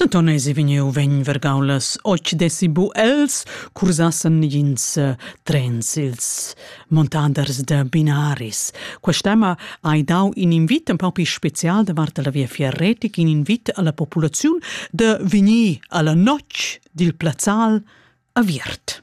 Denton esi vegniu vegn vargau las otg dessi bu els cursassen negins eh, trens ils montaders da Binaris. Questa tema hai dau in invit un paupi special davart la via fierretic, in invit alla populaziun de vegnir alla notg dil plazzal aviert.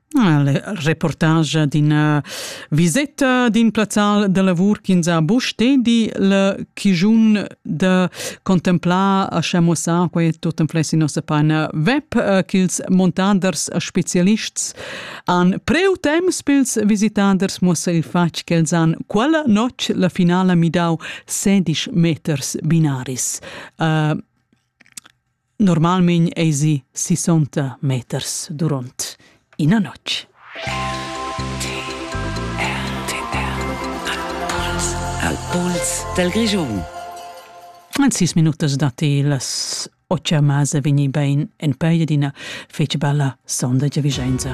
reportage d'ina viseta d'in plazzal da lavur ch'ins ha buc stedi le chigiun da contemplar a schamussar quei tut en fles in nossa paina web eh, ch'ils montaders specialists han preu temps pils visitaders muossa il fatg ch'els han quella notg la finala midau sedisch meters binaris uh, Normalmein eisi sissonta meters duront ina notg. Al pols dal Grischun. En sis minutas datti las otga mase vegni bein en peia d'ina fetg bella sonda Vigenza.